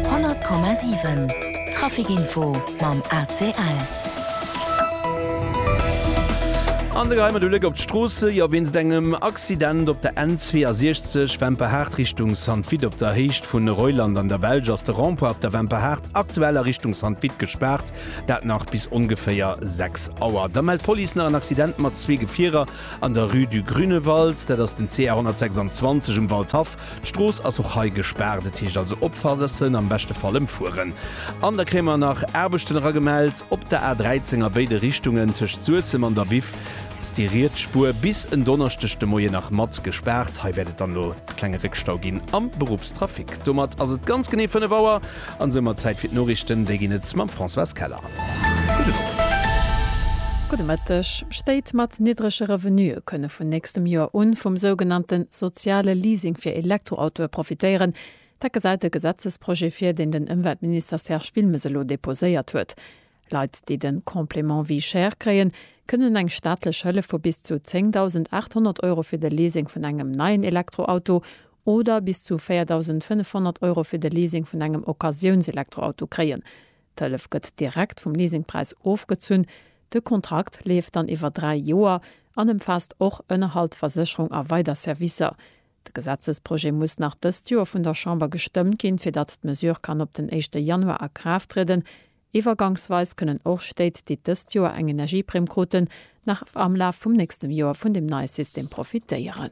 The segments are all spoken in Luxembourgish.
100,7 Traficinfo mam ACL. An de Geheimer de Bléck op d'Stroosse, jo wéinst engem Accident op der N62 Wemperhaart Richtung Sanvit op der Héicht vu Reuland an der Belsch ass de Rond-point op der Wemperhaart aktuell a Richtung Sanvit gespaart, dat nach bis ongeféier 6 Auer. Da mellt d'Police nach en Accident mat zwee Gefierer an der Rue du Grünewald, dat ass den CR 126 um Waldhaff D'Strooss ass och hei gespaart, et heescht also opfassen, am beschte Fall ëmfueren. An da kréie mer nach Aarbechten eragemellt op der A13 a béide Richtungen, tëscht Suessem an der Biff ass déi riets Spuer bis en Donneschdeg de Moien nach mat gespaart. Hei wäert et dann elo e klenge Réckstau ginn am Beruffstrafic. Domat ass et ganz genee 5 Auer. An esou mat Zäit fir d'Noriichten. Déi ginn et mam Françoise Keller. Gudde Moies. Gudde Mëtteg. Stéit mat niddrege Revenue kënne vun nächstem Joer u vum sougenannte soziale Leasing fir Elektroautoe profitéieren. Dat gesäit e Gesetzesprojet vir, deen den Ëmweltminister Serge Wilmes elo deposéiert huet. Leit, déi de Complément vie chère kréien, kënnen eng staatlech Hëllef vu bis zu 10.800 Euro fir de Leasing vun engem neien Elektroauto oder bis zu 4.500 Euro fir de Leasing vun engem Occasiounselektroauto kréien. D'Hëllef gëtt direkt vum Leasingpräis ofgezunn. De Kontrakt leeft dann iwwer dräi Joer an ëmfaasst och Ënnerhalt, Versécherung a weider Servicer. De Gesetzesprojet muss nach dëst Joer vun der Chamber gestëmmt ginn, fir datt d'Mesure kann op den éischte Januar a Kraaft trieden. Iwwergangsweis kënnen och Stéit, déi dëst Joer eng Energieprimm kruten, nach am Laf vum nächstem Joer vun dem neie System profitéieren.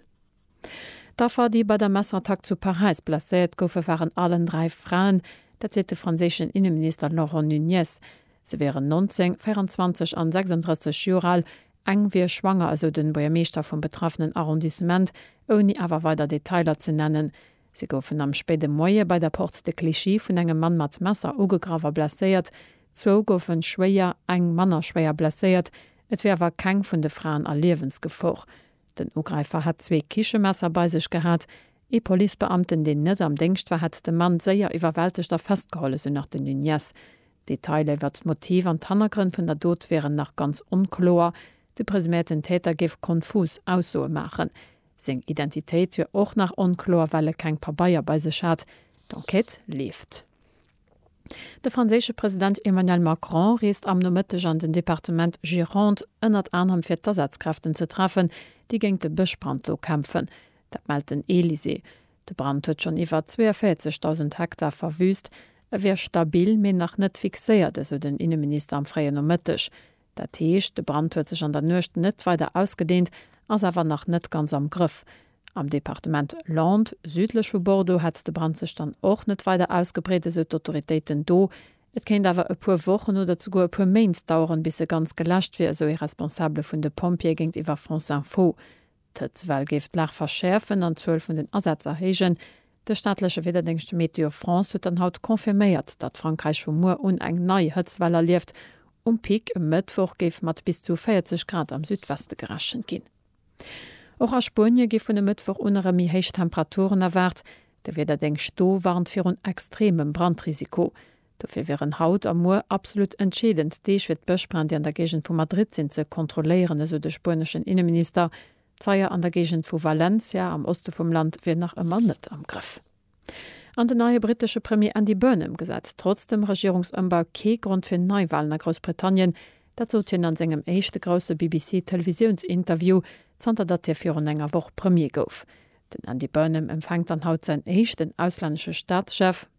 D'Affer, déi bei der Messerattack zu Paräis blesséiert goufen, waren allen dräi Fraen. Dat seet de franséischen Inneminister Laurent Nunez. Se wieren 19, 24 an 36 Joer al. Eng wier schwanger, esou de Buergermeeschter vum betraffenen Arrondissement, ouni awer weider Detailer ze nennen. Si goufen am spéide Moie bei der Porte de Clichy vun engem Mann mat Messer ugegraff a blesséiert. Zwou goufe schwéier, eng manner schwéier blesséiert. Et wier awer keng vun de Fraen a Liewensgefor. Den Ugräifer hätt zwee Kichemesser bei sech gehat. Ee Policebeamten, deen net am Déngscht war, hätt de Mann séier iwwerwältegt a festgeholl, esou nach de Nuñez. D'Detailer iwwert d'Motiv an d'Hannergrënn vun der Dot wieren nach ganz onkloer. De presuméierten Täter géif konfus Aussoe maachen. Seng Identitéit wier och nach onkloer, well e keng Pabeier bei sech hat. D'Enquête leeft. De franséische President Emmanuel Macron reest am Nomëtteg an den Departement Gironde, ënnert anerem fir d'Asazkräften ze treffen, déi géint de Bëschbrand do kämpfen. Dat mellt den Elysée. De Brand huet schonn iwwer 42.000 Hektar verwüüst. E wier stabil, mee nach net fixéiert, esou den Inneminister am fréien Nomëtteg. Dat heescht, de Brand huet sech an der Nuecht net weider ausgedeent, ass awer nach net ganz am Grëff. Am Departement Landes, südlech vu Bordeaux, hätt de Brand sech dann och net weider ausgebreet, esou d'Autoritéiten do. Et kéint awer e puer Wochen oder zeguer e puer Méint daueren, bis e ganz geläscht wier, esou ee Responsabele vun de Pompjeeë géintiwwer France Info. D'Hëtzwell géif d'Lag verschäerfen an d'Zuel vun den Asätz erhéijen. De staatleche Wiederdéngscht Météo France huet dann haut confirméiert, datt Frankräich vu muer un eng nei Hëtzwell erlieft. Um Pic e Mëttwoch géif mat bis zu 40 Grad am Südweste gerechent ginn. Och a Spuenie gi vun e Mëttwoch un erëm méi héich Temperaturen erwaart. De Wiederdéngscht do warnt virun extremem Brandrisiko. Dofir wieren haut a muer absolut entscheedend Deeg fir d'Bëschbränn, déi an der Géigend vu Madrid sinn, ze kontrolléieren, esou de spueneschen Inneminister. D'Feier an der Géigend vu Valencia am Oste vum Land wier nach ëmmer net am Grëff. An den neie brittesche Premier Andy Burnham gesäit trotz dem Regierungsëmbau kee Grond fir Neiwalen a Groussbritannien. Dat sot hien an sengem éischte grousse BBC-Televisiounsinterview, zanter datt hie virun enger Woch Premier gouf. Den Andy Burnham empfänkt dann haut säin éischten auslännesche Staatschef.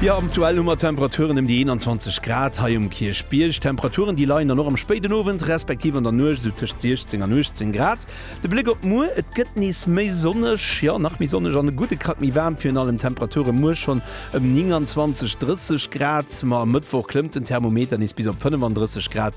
Jo, aktuell hu mer Temperaturen ëm déi 21 Grad hei um Kierchbierg. Temperaturen, déi leien dann och am spéiden Owend, respektiv an der Nuecht esou tëscht 16 an 18 Grad. De Bléck op muer, Et gëtt nees méi sonneg, jo, nach méi sonneg an e gudde Krack méi waarm. Virun allem d'Temperature muer schonn ëm 29, 30 Grad. Ma e Mëttwoch klëmmt den Thermometer nees bis op 35 Grad.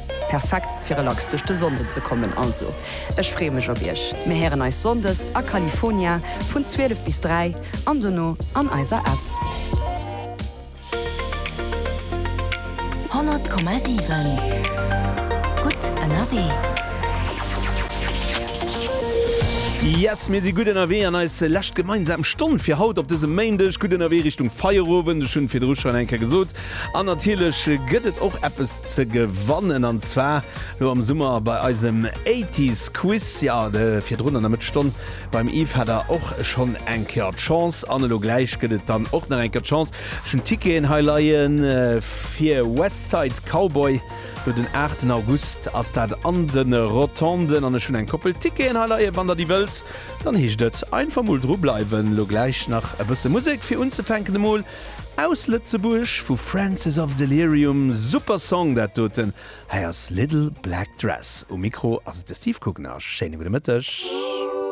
Perfekt fir relax duerch de Sonnden ze kommen. Also ech freeë mech op iech. Mir héieren eis Sonndes a California vun 12 bis 3 an dono an eiser App. 100,7 gutt ënnerwee. Yes, mir si gutt ënnerwee an eis lescht gemeinsam Stonn fir haut op dësem Méindeg. Gutt ënnerwee Richtung Feierowend. Ech hunn virdru schonn eng Kéier gesot, An natierlech gëtt et och eppes ze gewannen an zwar lo am Summer bei eisem Eighties Quiz. Jo, virdrun an der Mëttesstonn beim Yves hat der och schonn eng Kéier d'Chance an elo gläich gëtt et dann och nach eng Kéier d'Chance. Ech hunn d'Ticketen hei leien fir West Side Cowboy, lo den 8 en August ass dat an de Rotonden an ech hunn eng Koppel Ticketen hei leien, wann der déi wëllt. Dann heescht et einfach mol dru bleiwen. Lo gläich nach e bësse Musek fir unzefänken emol. Aus Lëtzebuerg vu Francis of Delirium, super Song dat doten. Hei ass Little Black Dress. Um Mikro ass et de Steve Coogan a schéine gudde Mëtteg.